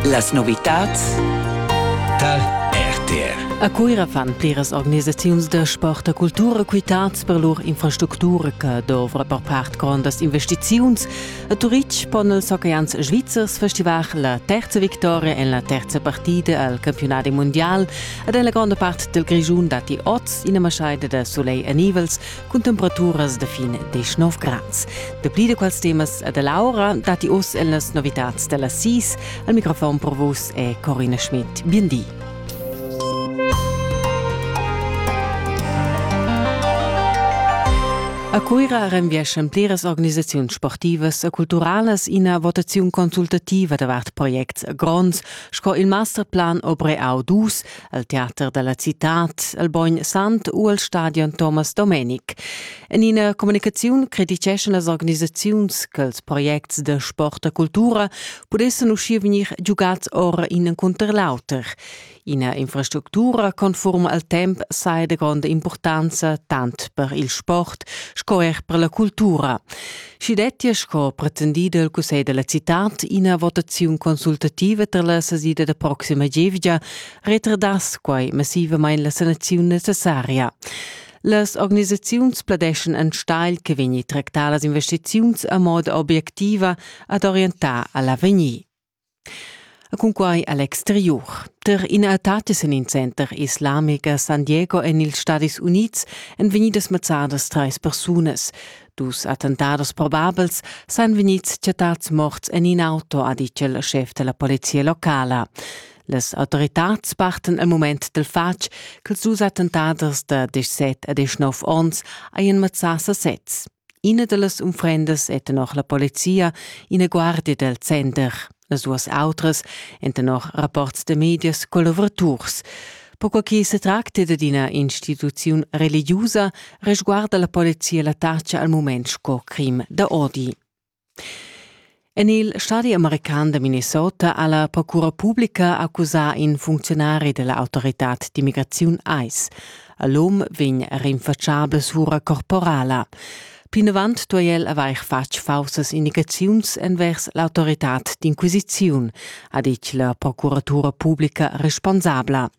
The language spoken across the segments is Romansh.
Las novitats tar RTR. A Cuira fan pliras organisaziuns da sport e cultura quitads per lur infrastructura che dovra per part grondas investiziuns. A Turitg pon els hockeys svizzers festivar la terza victoria en la terza partida al campionat mondial ed en la gronda part del Grischun datti oz ina maschaida da soleil e nivels cun temperaturas da fin 19 grads. Dapli da quels temas da Laura datti oz en las novitads da las 6. Al microfon per vos è Corina Schmidt. Bindi. A Cuira renvieschan pliras organisaziuns sportivas e culturalas ina votaziun consultativa davart projects gronds sco il masterplan Obre Au 2 al teater dalla citad, al Bogn Sant u al stadion Thomas Domenic. En ina communicaziun criticeschan las organisaziuns che ils projects de sport e cultura pudessen uscir vegnir giugats ora in encunter l'auter. Ina infrastructura conform al temp sei de grande importanza tant per il sport sco er per la cultura. Schi dettia sco pretendì dal cussegl da la citad ina votaziun consultativa tar la sesida da proxima gievgia, retardass quai massivamain la sanaziun necessaria. Las organisaziuns pladeschan enstagl che vegni tractadas investiziuns a moda obiectiva ad orientar a l'avegnir. E cunquai a l'exteriur. Tar ina etatis en in center islamic a San Diego en ils Stadis Unids èn vegnidas mazzadas trais persunas. Dus attentados probabels sajan vegnids chattads morts en in auto, ha ditg il schef da la polizia locala. Las autoritads parten al mument dal fatg ch'ils dus attentaders da 17 e 19 onns hajan mazzà sasez. Ina dallas unfrendas è tenor la polizia ina guardia dal center. Las duas autras èn tenor rapports da medias collavuraturs. Perquai che se tracta da ina instituziun religiusa, resguarda la polizia l'attacca al mument sco crim da odi. En il stadi american da Minnesota ha la procura publica accusà in funcziunari da l'autoritad d'immigraziun ICE. L'um vegn rinfatschabel sura corporala. Plinavant duai el avair fatg faussas indicaziuns envers l'autoritad d'inquisiziun, ha ditg la procuratura publica responsabla.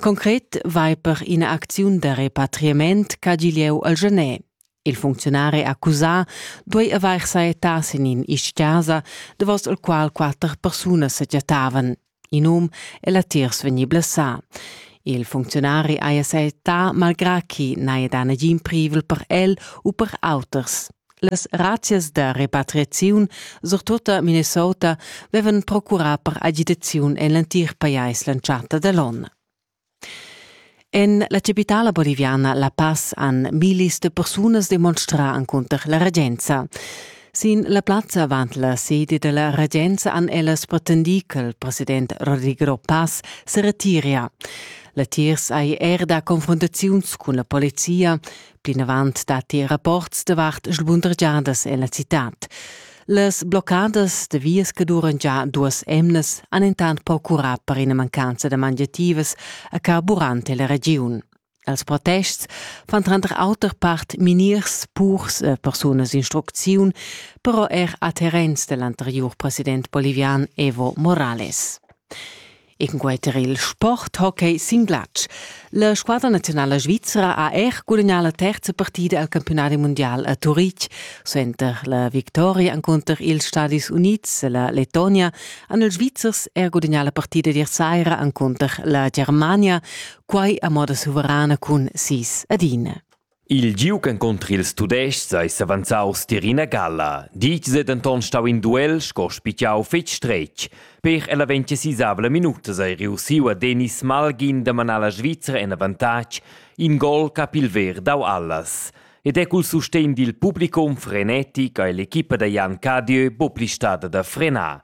Concret vai per ina acziun da repatriament ch'ha giu lieu al Genè. Il funcziunari accusà duei avair saettà sin in isch-casa, davos il qual quatter persunas sa chattavan. In um e latiers vegni blessà. Il funcziunari haja saettà malgrà chi n'haja dà nagin privel per el u per auters. Las razzias da repatriaziun, surtut a Minnesota, vevan procurà per agitaziun en l'entir pajais l'entschatta da l'onn. En la capitala boliviana La Paz han millis da persunas demonstrà encunter la regenza. Sin la plazza avant la sede da la regenza han ellas pretendì ch'il president Rodrigo Paz se retiria. Latiers hai er dà confrontaziuns cun la polizia, Plinavant datti rapports davart sbundergiadas en la citad. Las bloccadas de vias che duran già duas emnas han intant procurat per ina mancanza da mangiativas a carburante la regiun. Als protests fan tranter auter part miniers, purs e persunas instrucziun, però er a terrens dell'anterior president bolivian Evo Morales. En quei ter il sport hockey sin glatsch. La squadra nazionala svizra ha er gudagnà la terza partida al campionadi mundial a Turitg. Suenter la victoria encunter ils Stadis Unids e la Letonia han ils Svizzers er gudagnà la partida ier saira encunter la Germania, quai a moda suverana cun sis ad ina. Il giug encunter ils Tudestgs ei s'avanzaus tier ina galla, ditg ei denton stau in duel sco spitgau fetg stretg. Per ella ventisisavla minutas ei reussiu a Denis Malgin da manar la Svizra en avantatg, in gol ch'ha pil ver dau allas. Ed è cul sustegn dil publicum frenetic ei l'equipa da Jan Cadieu buca pli stada da frenar.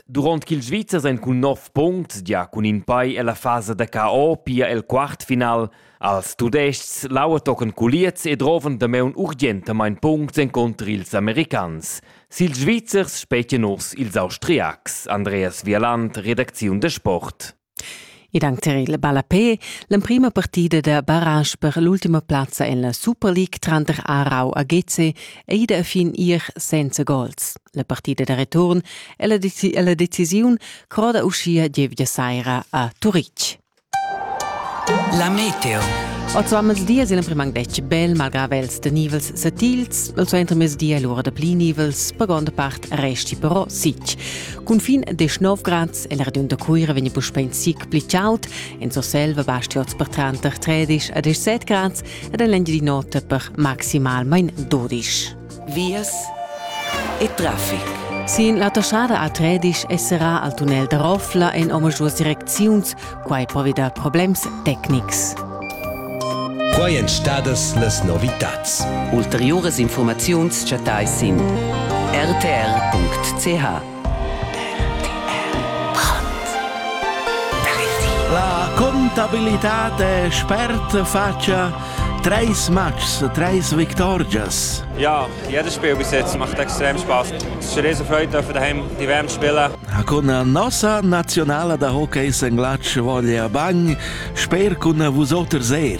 Durant ch'ils Svizzers ein cun nov punts gia cun in pei ella fasa da KO pia el quartfinal als Tudestgs lauertochen culiez e droven damaun urgentamain punts encunter ils americans. Sil Svizzers spetgen nus ils Austriacs. Andreas Vialand, Redakziun de Sport. Ed anc tar il ballapè l'emprima partida da barrage per l'ultima plazza en la Super League tranter Aarau e Geze è ida a fin ier senza gols. La partida da return è la, deci la decisiun croda uschia gievgia saira a Turitg. La meteo. Oz va mezdi è l'emprim anc detg bel, malgrà vels da nivels satils. Il suenter mezdi è l'ora da pli nivels, per gronda part resti però sic. Cun fin 19 grad El radund da Cuira vegni puspei in sic pli chaud, en Surselva basti oz per tranter 13 e 17 grads ed en l'Engiadin'Ota per maximalmein 12. Vias e traffic. Sin la toschada a Tredisch esserà al tunnel da Roffla en omaduas direcziuns, quai provi da problems tecnics. Quai èn stadas las novitads. Ulteriuras informaziuns chattais sin rtr.ch. La contabilitad è spert fatscha treis matchs, treis victorgias. Ja, jedes Spiel bis jetzt macht extrem Spaß. Es ist eine riesige Freude, dürfen daheim die WM spielen. Con nossa nazionala da hockey in Glatsch voglia bagn, sper cun vusoters er.